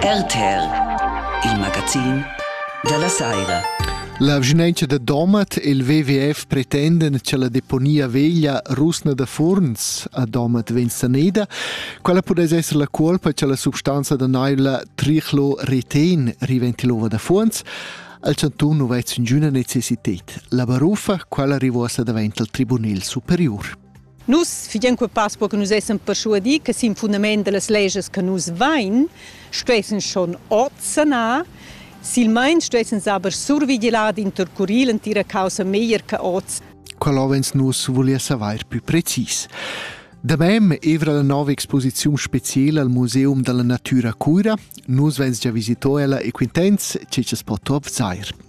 RTR, il magazin dalla saira. La vschinauncha da Domat e il WWF pretendan cha la deponia veglia rusna da Furns a Domat vegn saneda. Quella pudess esser la cuolpa cha la substanza da naila Trichlo retegn riventi l'ova da Furns. Al chantun nu vez ingüna necessited. La barufa, quella rivosa davent al Tribunil Superior. Nus figien quepas per che nus essem perschuadi che sin fundament dallas legias che nus vein stuessen schon oz sanar silmeins stuessen saber survigilar d'intercurir l'entira caussa meglier che oz. Qual avens nus volia saver pli precis. Damem evra la nova exposiziun speciala al Museum dalla Natura Cuira. Nus vens gia visito ella e quintens che ce po top zair.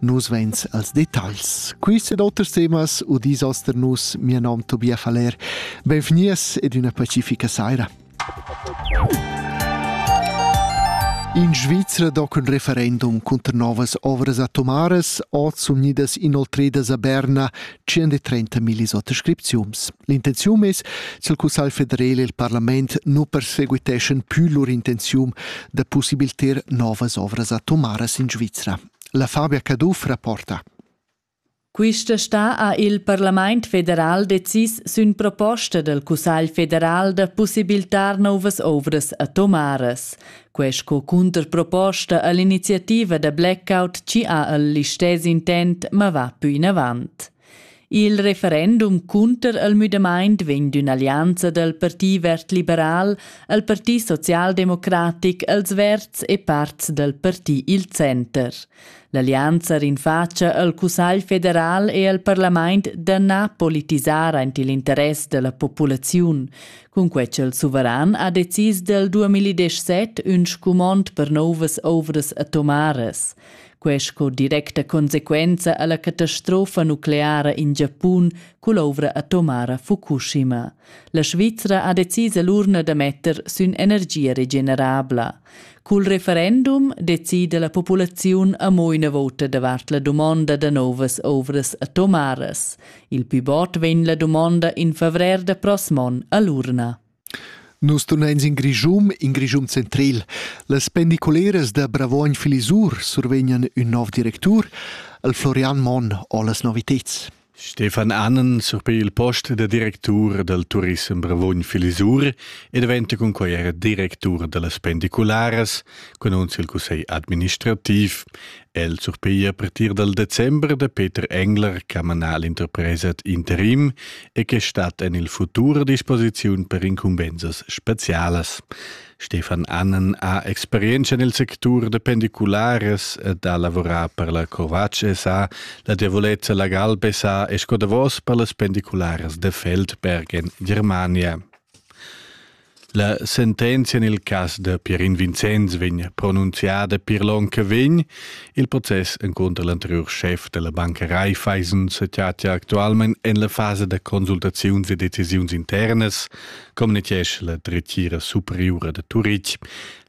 Nus veins als detagls. Quist ed oters temas udis oster nus, mia nom Tobia Faller. Benvenias ed una pacifica saira. In Svizra do cun referendum cunter novas ovras atomaras oz unidas inoltridas a Berna 130 millis autoscripziums. L'intenzium es ch'il Cussagl federal e il parlament nu perseguiteschan pü lur intenzium da pussibilter novas ovras atomaras in Svizra. La Fabia Caduff rapporta. Quista stà ha il Parlament federal decis sün proposta dal Cussagl federal da pussibiltar nouvas ovras atomaras. Quest co cunterproposta a l'iniziativa da blackout ci ha al listess intent ma va pü inavant. Il referendum cunter el müdamaint vegn d'ün'allianza dal Parti verd-liberal al Parti socialdemocratic, als verds e parts dal parti il center. L'allianza rinfacia al Cussagl federal e al parlament da na politisar aint il interess della populaziun. Cunque ch'el suveran ha decis del 2017 ün scumond per novas ouvras atomaras. Quai sco directa consequenza a la catastrofa nucleara in Giapun cull'ovra atomara Fukushima. La Svizra ha decis l'urna da metter sün energia regenerabla. Cul referendum decida la populaziun amo üna vota davart la dumonda da novas ovras atomaras. Il pivot vegn la dumonda in favrer da prossmon a l'urna. Nus tunein sin Grischun, in Grischun centril. Las pendiculeras da Bravuogn Filisur survegnan ün nov directur, el Florian Monn ho las noviteds. Stefan Annen surpei il post da directur dal turissem Bravuogn-Filisur e diventa cun quai era directur da las pendicularas, cun il cussegl administrativ El surpiglia a partir dal december da Peter Engler ch'ha manà l'interpresa ad interim e che stat en il futur a disposiziun per incumbensas spezialas. Stefan Annen ha experienza nel sectur da pendiculares ed ha lavorat per la Covace SA, la Diavolezza la Galbe SA e sco davos per las pendiculares de Feldberg en Germania. La sentenzia nel cas da Pierin Vincenz vegn pronunziada pir l'on che vegn, il process encunter l'anteriur chef della banca Raiffeisen se chatia actualment en la fase da consultaziuns e decisiuns internas, communichesch la dretgira superiura de Turitg.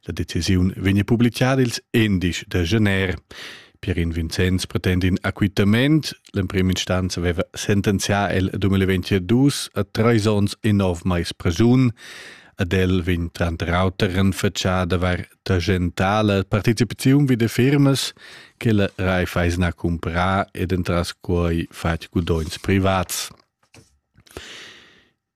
La decisiun vegn publicada ils endisch de gener. Per in Vincenz pretend in acquittament. L'emprim instanza aveva sentenzià el 2022 a treis onns e nov mais presun. Ad el vegn tranter auter renfatschà d'avair tagentà la participaziun vi de firmas che la Raiffeisen ha cumprà ed entras quai fatg gudogns privats.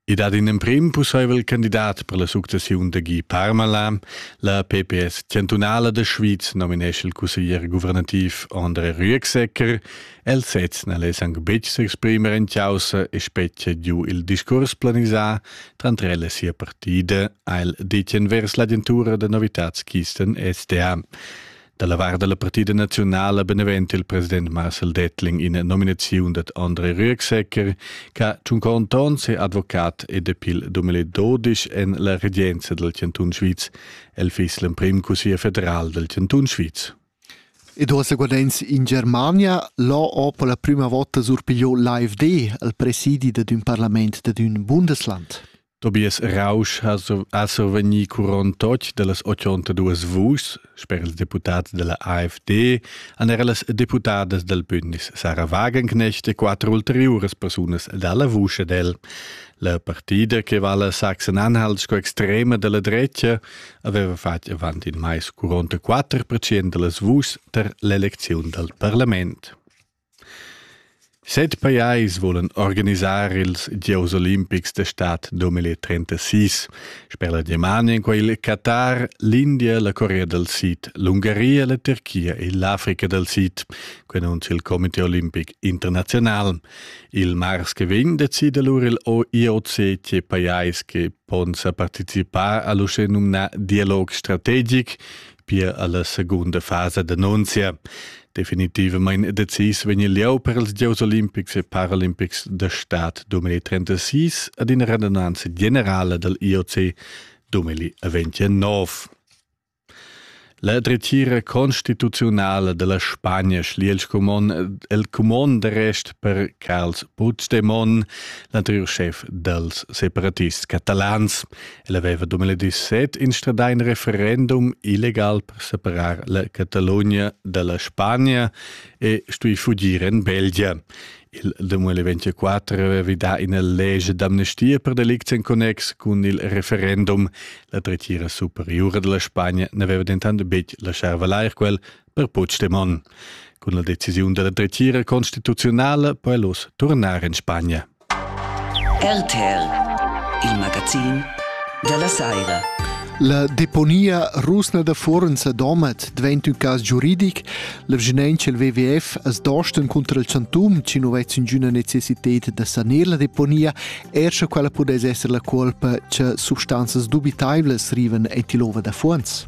I dat in emprim pussaivel candidat per la successiun da Guy Parmalin. La PPS chantunala da Schwyz nominesce il cusseglier guvernativ André Rüegsecker. El sez n'al es anc betg s'exprimer en chaussa e spetgia giu il discurs planisà tranter el e sia partida, ha el ditg vers l'agentura da novitads Kisten SDA. Da la vart da la partida naziunala beneventa il president Marcel Dettling ina nominaziun dad André Rüegsecker che tschuncaun ton ses advocat e depil 2012 en la regenza dal Chantun Sviz. El fiss l'emprim cussier federal dal Chantun Sviz. Ed ora seguadenz in Germania, l'ho per la prima volta surpigliò l'AFD al presidi dad ün parlament dad ün Bundesland. Tobias Rausch ha survegni curon tocc dallas 82 vuschs sper ils deputads dalla AfD han era las deputadas dal bündnis Sarah Wagenknecht e quatter ulteriuras persunas dalla vusch ed el. La partida che vala Sachsen-Anhalt sco extrema dalla drecha aveva fatg avant in mais curonta quatter percent dallas vuschs tar l'elecziun dal parlament. Set pajais vulan organisar ils gieus olimpics da stad 2036. Sper la Germania èn quai il Qatar, l'India, la Corea dal Sid, l'Ungaria, la Turchia e l'Africa dal Sid, quai annunzia il Comité olimpic internaziunal. Il mars che vegn decida lura il IOC tge pajais che pon sa participar a l'uschè numnà dialog strategic pia alla secunda fasa d'annunzia. Definitivamente decis vegni lieu per ils Giots Olimpics e Paralimpics da Staat 2036 ad una radunanza generale del IOC 2029. La dretgira constituzionale della Spagna schlie il cumon, il cumon de rest per Carls Puigdemont, l'anterior chef dels separatists catalans, El aveva 2017 instradà in referendum illegal per separar la Catalogna dalla Spagna e stuì fugir en Belgia. Il 2024 aveva vi dà ina legge d'amnestia per delicts en connex cun il referendum. La dretgira superiura della Spagna n'aveva dentant betg lascià valair quel per Puigdemont. Cun la decisiun della dretgira constituzionale può el oz tornar en Spagna. RTL, il magazin dalla saira. La deponia rusna da Fuorens a Domat dvaint ün cas giuridic. La vgenentscha il WWF as dostan contra il chantum, chi nu vez ingüna necessited da sanir la deponia, er scha quella pudess esser la cuolpa cha substanzas dubitaivlas rivan aint ill'ova da Fuorens.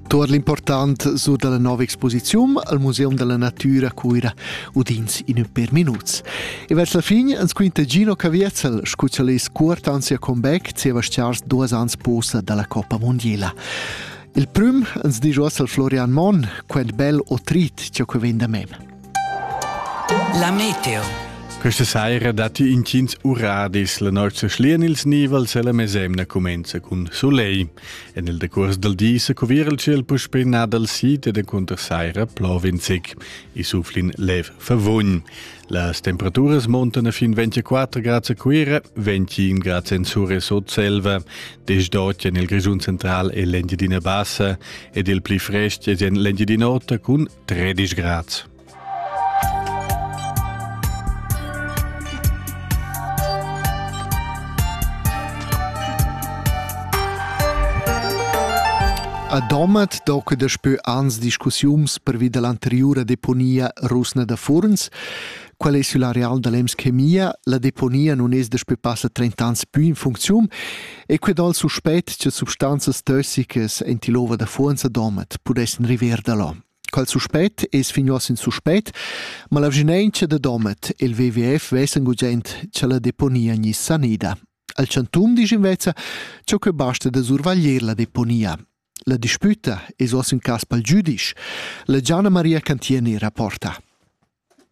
Tuot l'important sur dalla nova exposiziun al Museum della Natura a Cuira udins in per minuts. E vers la fin ans quinta Gino Caviezel, scuccialist cuort ans sia comeback zieva stars duas ans posa dalla Coppa Mondiela. Il prüm ans disch uoss al Florian Monn, quant bel o trit ciò che vegn da mem. La meteo. Questa saira datti intgins uradis. La nossa schlian ils nivels e la mesemna cumenza cun soleil. En il decurs dal di se cuvira il ciel puspè nà dal sid ed cunter saira plovenzig. I suflin lev favugn. Las temperaturas montano fin 24 grads a Cuira, 21 grads en Sur e Sotselva, desdotg en il Grigiun central e l'Engiadina Bassa ed il pli frest è en l'Engiadin'Ota cun Tredisch Grad. A Domat doca daspö ans discussiums pervi da l'anteriura deponia rusna da Furns Quel ei sül areal da l'Emschemia, la deponia nun es daspö passa 30 ans pü in funcziun e que dal suspet cha substanzas tossicas in tilova da Fuonza Domat pudessan river da là. Quel suspet es finios in suspet, ma la vginentscha da Domat e il WWF vessan gugent cha la deponia gnisse sanida. Al chantum disch invezza cha que basta da survaglier la deponia. La dispüta es uoss ün cas pel giüdisch. La Gianna Maria Cantieni rapporta.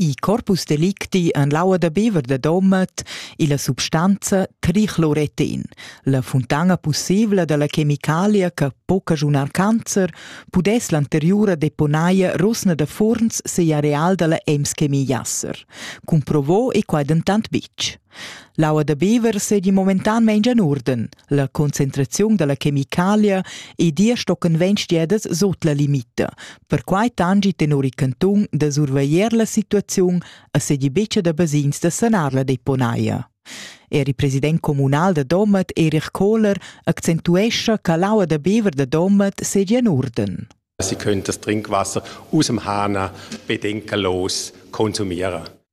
I corpus delicti en l'aua da bever da Domat illa substanza tricloretin, la funtana pussibla da la chemicalia che po cagiunar cancer, pudess l'anteriura deponaia Rosna da Furns seir areal da la Ems Chemie Jasser. Cumprovò e quai dentant bitg. L'aua da bever seigi momentan meins en uorden. La concentraziun dalla chemicalia e dir stocken ventg diedas sut la limita. Perquai tangi tenor il cantun da surveglier la situaziun a sedi beccia da basins da sanar la deponaia. Er il president communal da Domat, Erich Kohler, accentuescha che l'aua da bever da Domat sedia en urden. Sie können das Trinkwasser aus dem Hahner bedenkenlos konsumieren.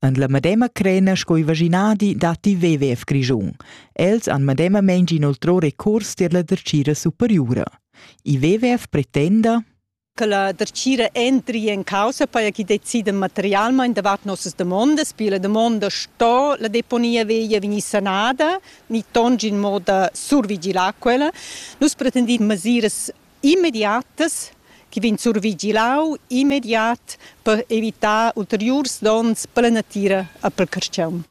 En la medema crena sco i vaginadi datti WWF Grischun. Els han medemamain inoltrò recurs tier la dertgira superiura. I WWF pretenda che la dertgira entri in causa per chi decida materialmente davart nossas demandas, perché la domanda sto la deponia veglia vegnir sanada, ni tongi in moda survigilar quella. Nus pretendiamo mesiras immediatas chi vegn survigilau immediat per evitar ulteriurs donns per la natira e pel carstgaun.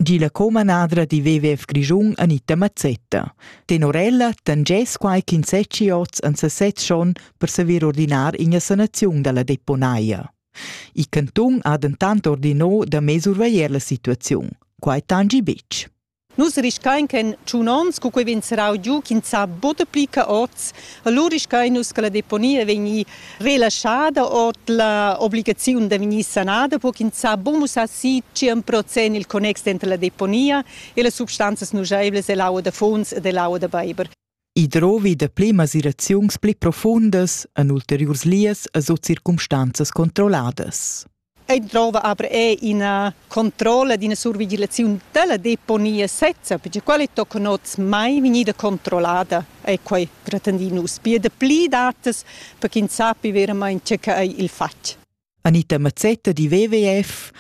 Gi la comanadra di WWF Grischun Anita Mazzetta. Tenor ella tangess quai ch'in seci oz an sesez schon per saver ordinar ina sanaziun dalla deponaia. Il cantun ha dentant ordinò da mesurveglier la situaziun. Quai tangi betg. Nus riscain che in tschun ons, cu quei vegn serrau giu, ch'ins sa buca pli ca oz, allura riscain nus che la deponia vegni relaschada ord la obligaziun da vegnir sanada, per ch'ins sa buca mussar si tschien procent il connex denter la deponia e las substanzas nuscheivlas ell'aua da funs ed ell'aua da beiber. I drovi dapli masiraziuns pli profundas en ulteriurs lias e sut circumstanzas controlladas. Ei drova aber è ina controlla d'ina survigilazione della deponia sezza, perché quelle toccano oz mai vegnida controllata è quei gratandino uspia da pli datas per ch'ins sappi veramente che è il fatg. Anita Mazzetta di WWF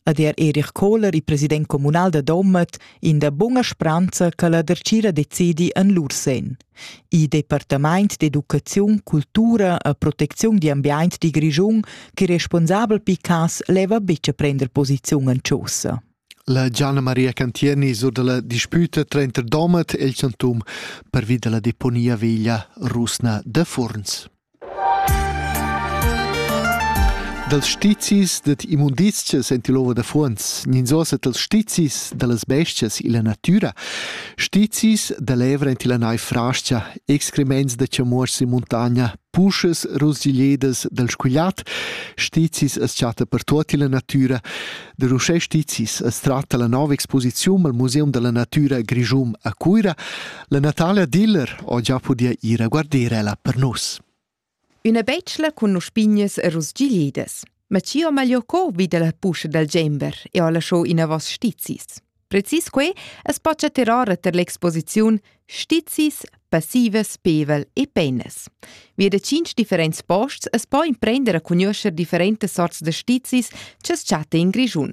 ad er Erich Kohler, il president communal da Domat, in da bunga spranza che la dercira decidi en lur sen. Il departament d'educaziun, cultura e protecziun di ambient di Grischun, che responsabel Picas leva bice prender posiziun en Chaussa. La Gianna Maria Cantieni sur dalla disputa tranter Domat e il Chantum pervi dalla deponia veglia rusna da Furns. Dals stizis dad immundizchas en til ova da fuonz, ninzosa dals stizis da las bestias illa natüra, stizis da l'evra en tilla naiv frascha, excrements da chamuors in muntagna, puschas rusgigliedas dal scugliat, stizis as chatta per tuot illa natüra, da uschè stizis as tratta la nova exposiziun al Museum da la natüra Grischun a Cuira, La Natalia Diller ho già pudia ir a guarder ella per nus. Üna betschla cun uspignas e rusgiglidas. Ma chi ho magliò co vi da la puscha dal Gember e ho lasciò inavos stizis. Precis que es pocha terrora ter l'exposiziun Stizis, passivas, pevel e penas. Vi da tschinch differents posts es po imprender a cugnuoscher differentas sorts da stizis cha's chatta in Grischun.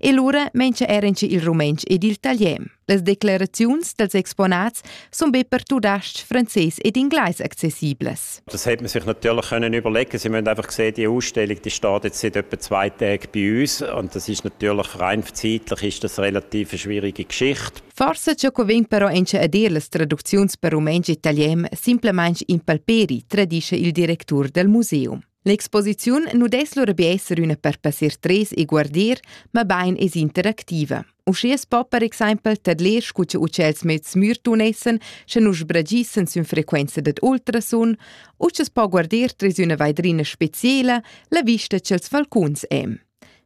E lura mengia era in il rumentsch ed il talian. Las declaraziuns dels exponats sun be per tudasc, franzés ed inglais accessiblas. Das hätte man sich natürlich können überlegen Sie müssen einfach sehen, die Ausstellung die steht jetzt seit etwa zwei Tagen bei uns und das ist natürlich rein zeitlich ist das relativ eine schwierige Geschichte. Forse ciò che vegn però a dir las traducziuns per rumentsch e italian simplesmente impalperi, tradisce il direttore del museum. L'exposiziun nu dess lura be esser üna per passer tres e guardir, mabain es interactiva. Uschè es po per exaimpel tadler scu cha utschels mezs smirtun essan, sche nu sbragissan sün frequenza dad ultrasun, u scha's po guardir tres üna vaidrina speciela, la vista cha'ls falcuns hem.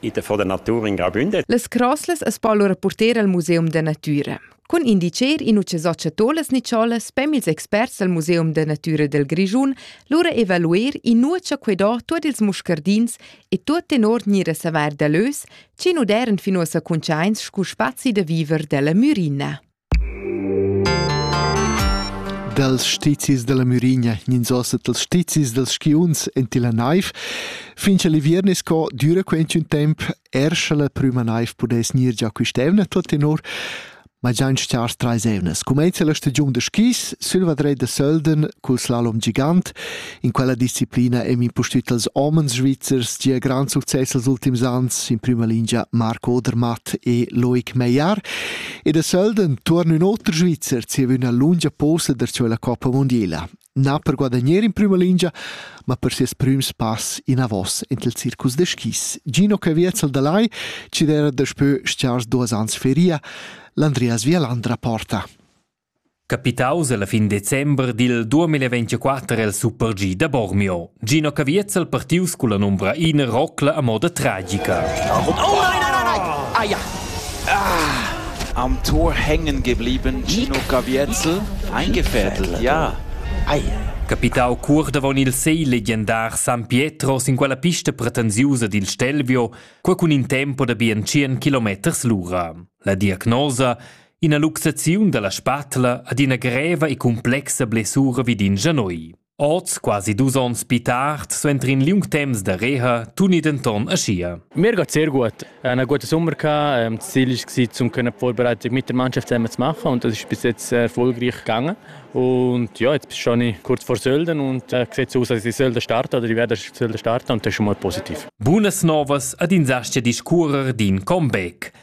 ite fo da natura in grabündet. Las croslas as po lura porter al Museum da natüra. Cun indicher in uche socia tolas nicholas pem ils experts del Museum da Natura del Grischun lura evaluer in nuocha que do tuot ils muscardins e tuot tenor gnire saver da lös, chi nu deren fin uossa cuntschaints scu spazi da viver della mürina. dals stizis dalla Mürigna gnins ossa dals stizis dals skiunzs en tilla naiv. Fin cha l'iviern es co düra quinch'ün temp er scha la prüma naiv pudess gnir già quist'eivna tuot tenor, ma già in chars trais evnas. Cumainza la stagiun da skis sülla vadreda Sölden cul slalom gigant In quella disciplina è impustüt als homens svizzers gia grand success els ultims ans, in prima lingia Marco Odermatt e Loic Meyer. E da sölden tuorn ün oter Svizzer zieva üna lungia posa der la Coppa Mondiela. Na per guadagnar in prima lingia, ma per ses prüms pass in avos ent il circus de skis. Gino Cavietzel da Lai ci era daspö stiars duas ans feria, l'Andreas Vialandra porta. Capitaus ella fin december dil duamilla ventgaquatter el Super G da Bormio. Gino Caviezel partius culla numbra ina rocla a moda tragica. Oh nein, nein, nein, nein! Ah ja! Ah, am Tor hängen geblieben Gino Caviezel. Eingefädelt, ja. Ei. Capitau cur davon il sei legendar San Pietro sin quella pista pretensiusa dil Stelvio, quei cun in tempo da bien tschien kilometers lura. La diagnosa Ina luxaziun dalla spatla ad ina greva e complexa blessura vid in gianoi. Oz, quasi dus onns pi tard, suenter in liung temps da reha, tuni denton aschia. Mir geht sehr gut. Eine gute Sommerka. Ähm, das Ziel war, um können vorbereitet mit der Mannschaft zusammen zu machen und das ist bis jetzt sehr erfolgreich gegangen. Und ja, jetzt bin ich kurz vor Sölden und äh, sieht so aus, dass ich Sölden starte oder ich werde Sölden starten und das ist schon mal positiv. Bunas novas ad in zastia discurrer d'in comeback.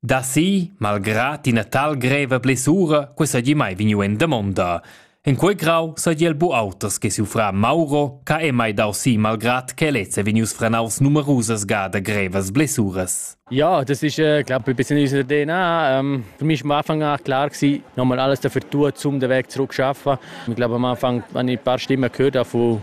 Da si, malgrà tina tal greva blessura, que sagi mai vegniu en damonda. In quei grau sagi el bu auters che suffra Mauro, ca è mai dau si malgrad che lezza vegnius franaus numerusas gada grevas blessuras. Ja, das ist äh, glaube ein bisschen unser DNA. Ähm, für mich am Anfang war klar gewesen, nochmal alles dafür tun, um den Weg zurück zu schaffen. Ich glaube am Anfang habe ich ein paar Stimmen gehört von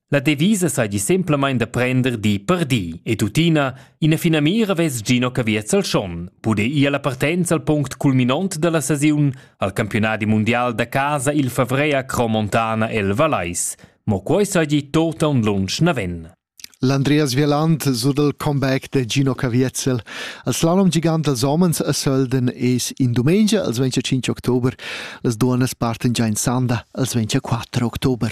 La devisa seigi semplamein da prender di per di e tuttina ina finamira vess Gino Caviez al Schon pude ir alla partenza al punct culminont dalla sesiun al campionadi mundial da casa il favrer a Cromontana el Valais. Mo quei seigi tota un lunsch naven. L'Andreas Vieland sur dal comeback da Gino Caviezel. Al slalom gigant als homens a Sölden es in dumengia, als 25 october, las duonas parten già in Sanda, als 24 october.